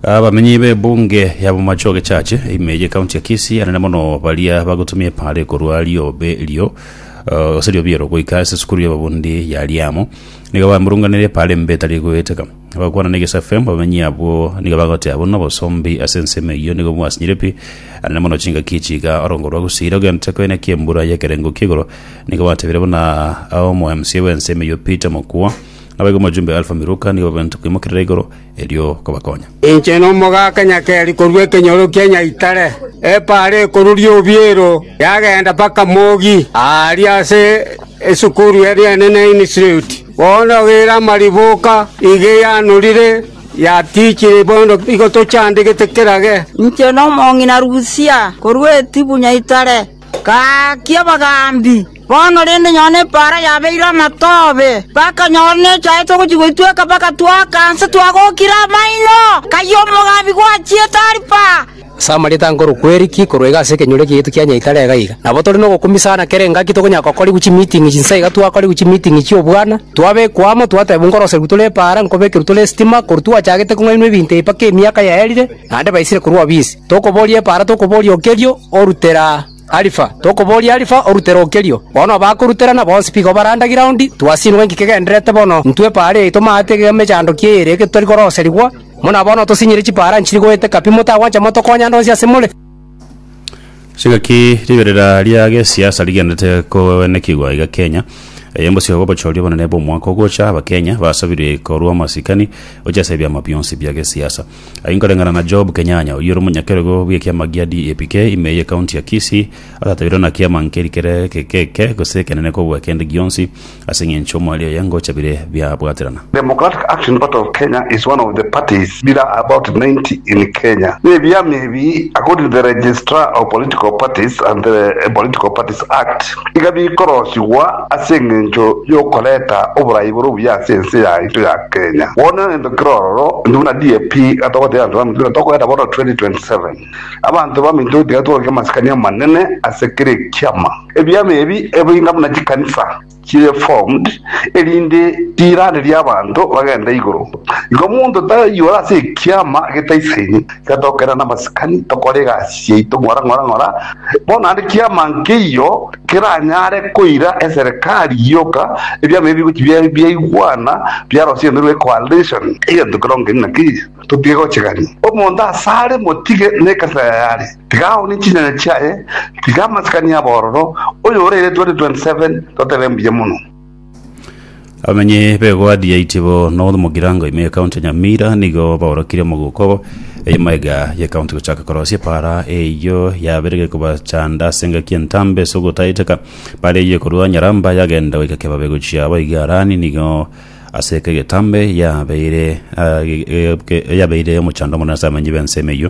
Abamenyi b'ebunge ya Bomacho Gechache ime ye county ya Kisii anene mono baria bagotumia epara ekorwa riobe erio eh, gose riobe ero goika ase esukuru y'ababundi ya Liamo nigo bamurunganire epara embe etari goeteka bagokwana na Egesu FM abamenyi abwo nigo bagoteba buna obosombi ase ensemo eyio nigo bwasinyire pi anene mono chingaki chiga orongo rwa gusira ogento koine kiembura y'ekerengo ki'igoro nigo batebire buna omo MCA bw'ensemo eyio Peter Mokua Naboigo omojumbe o Alfa Miluka nigo bwabwenerete koimokerera igoro, erio kobakonya. Inche nomogaka nyakeri korwa ekenyoro kia nyaitare, epaara ekoruria obiero yagenda mpaka mogi aaria ase esukuru eria enene Institiuti. Bono ogeire amariboka iga eyanorire yatichire bono igo tochandegete kerage. Inche nomong'ina Rusia, korwa Etibu nyaitare. Gaakia abagaambi, bono rende nyora nepaara yabeirwe amatobe, bakanyora nechaete ogochia goitweka, bagatwaka nse twagokire amaino. Kayio omogaambi gwachiete aria pa. Ase amarieta a nkoro kweriki korwa iga ase ekenyoro ekeyeito kia Nyaitare iga iga. Nabo tore nogokumia sana kera engaki tokonyara gokorigwa chimiiting'i chinsa iga twakorigwa chimiiting'i chi'obwana, twabekwa amo, twatebwa nkoroserigwe tore epaara, nkobekerwe tore esitima, korwa twachagete kong'ainwa ebinto ebi mpaka emiaka yaerire, naende baisire korwa obisi. Tokoboria epaara, tokoboria okerio, orutera Alifa, tokoboria Alifa, orutera okerio. Bono abakoruterana bonsi bigo barande giraundi, twasinigwe inki kegendererete bono, intwe epaara yaito maate iga emechandoki eye ere getari koroserigwa. Buna bono tosinyire chipaara nchiri goeteka pi, motagwancha motokonya ande onsi asemore. Chingaki riberera ria gesiasa rigenderete koenekigwa iga Kenya. Eye mbosio bw'obochori obonene bw'omwaka ogocha, Abakenya basabire korwa amasikani gochia ase ebiama bionsi bia gesiasa. Aye nkoreng'ana na Job Kenyanya, oyio ore omonyakerogo bw'ekiama gia DAPK ime ye county ya Kisii, atatabeirwe na kiama nkeri kere keke gose ekenene kobua kende gionsi ase eng'encho omwari oye ngocha bire biabwaterana. Democratic Action Party of Kenya is one of the parties bira about 90 in Kenya nebiama ebi according to the Registrar of Political Parties and the Political Parties Act. iga bikorosigwa ase engencho y'okoreta oboraai bore obuya ase ense yaito ya Kenya. Bono nento kere ororo, intwe buna DAP iga togotebia abanto baminto buna tokoreta bono 2027. Abanto baminto tiga tworokie amasikani amanene ase kera ekiama. Ebiama ebi ebe inga buna chikanisa chire formed erinde riiranerie abanto bagende igoro. Igo omonto tayiora ase ekiama getaisaini. Tiga togokenda namasikani, tokore egasi yaito ng'ora ng'ora ng'ora, bono naende kiama nkeiyo keranyare koira eserekari gioka, ebiama ebi bigochi biaigwana, biarosia egento ekiruete coalition, egento kero nkeri na keri, totige gochegania. Omonto asare motige nekanisa yayare, tiga aonie chinyanya chiaye, tiga amasikani abororo, oyore eretwa ri 27 totebe mbuya mono. Abamenyi b'egwadi ya Itibo North mu Girango ime y'ekaunti ya Nyamira nigo baorokire omogoko obo eyemo iga y'ekaunti gochaka korosia epaara eyio yaberire kobachanda ase engaki y'entambe ase ogotaeteka epaara eyio ekorwa Nyaramba yagenda goika Kebabe gochia abo iga Harani nigo ase eke egetambe yabeire ah, ge- ge- ge- yabeire omochando omonene ase abamenyi b'ensemo eyio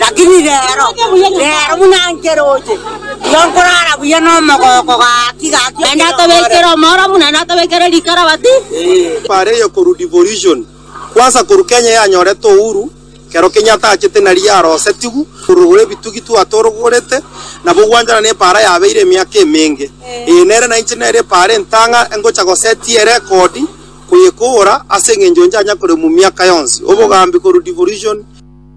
Lakini reero, reero buna nkeroche, igo nkorara buya nomogooko gaki gaki Naende okinyong'orete. atobekire omoromu, naende atobekire rikarabati. Bare ya korwa devolution kwanza korwa Kenya yanyorete uhuru kero Kenyatta achete nari yarosetigu korogora ebitugi twatorogorete nabo gwanchana ne para yabeire emiaka emenge eye nere nainche nere para entang'a engocha gosetia erekodi koyekogora ase eng'encho nchanya koremwa miaka yonsi obogambi korwa devolution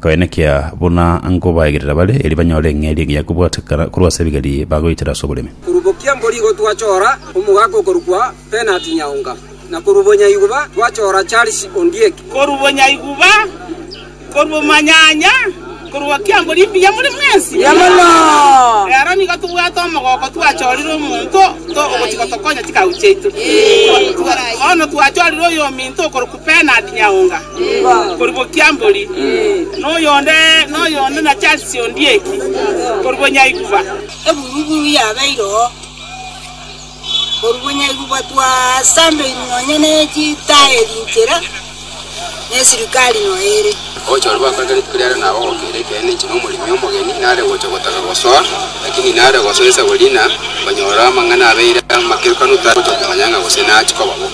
Koene kea, buna nkobaegerera bare, erio banyore eng'eria engiya kobwatekana korwa ase ebigeri bagoitera ase oboremi. Korubokia mborigo twachora omogaka okorokwa Bernard Nyaonga, na korwa bonyaiguba twachora Charles Ondieki. Korwa bonyaiguba, korwa omanyanya, korubokia mbori mbuya more mwensi. Rero nigo tobwate omogoko twachorire omonto ogochia gotokonya chikagu chiaito. Bono twachorire oyominto okorokwa. Bernard Nyaonga korwa Bokiambori, na oyonde noyonde na Charles Ondieki korwa Bonyaiguba. Eburuburu yabeire oo korwa Bonyaiguba twasambeirwe nonya ne chitaeri inchera ne sirikari noyo ere. Ogocha oria gwakore rituko riareo nabo gokeire ekeene inche nomoremi omogeni nare gocha gotaka gosoa, lakini nare gosoa esago riina, nkonyora amang'ana abeire amakerukano tari gocha komanya ng'a gose nachi koba bo.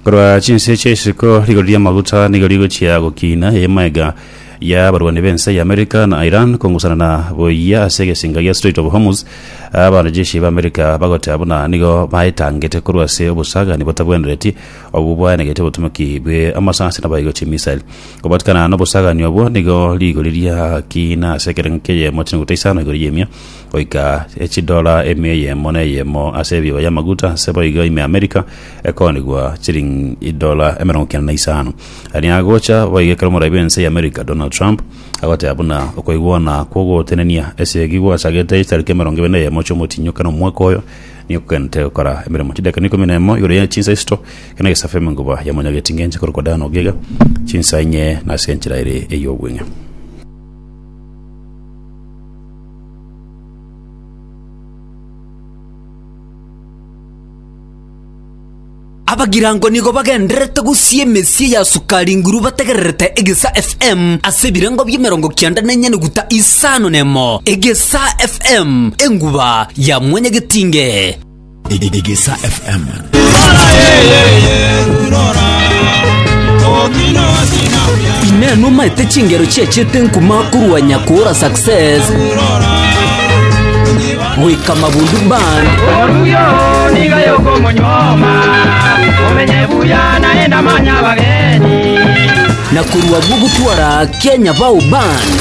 Korwa chinse chia isiko, rigori ri'amaguta nigo rigochia gokiina eemaega y'abarwani b'ense y'Amerika na Iran kongusanana buya ase egesinka gia Strait of Hormuz, abanajeshi b'Amerika bagoteba buna nigo baetangete korwa ase obosagani botabwenereti obwo bwaenegete obotomeki bw'amasasi na boigo chimisail. Kobatikana nobosagani obwo nigo rigori riakiina ase ekerengo ki'eyemo chinguta isano igoro y'emia goika echidola emia eyemo na eyemo ase ebibo y'amaguta ase boigo ime Amerika ekoonigwa chiringi edola emerongo kianda na isano. Aria agocha boigo ekero omoraia bw'ense y'Amerika Donald Trump agoteba buna okoigwana kw'ogotenenia esegi gwachagete ase tariki emerongo ebere na eyemo chi'omotinyo kera omwaka oyo nigo kogwenerete gokora emeremo. Chidakika na ikomi na emo igoro ya chinsa isito kera egesafa emenguba yamonyageti ngencho ekorokwa Dan Ogega, chinsa inye na ase enchera ere ey'obweng'e. Abagirango nigo bagendererete gosia emesie ya Sukari Nguru bategererete Egesa FM ase ebirengo bi'emerongo kianda na enyanuguta isano nemo. Egesa FM, enguba ya mwanyagetinge. Egesa FM. Ineno maete chingero chiachete nkuma korwa nyakora success goika mabundu band oruyo niga yokomonyoma omenye buya naye namanya abageni na korwa bwo gotwara kenya bao band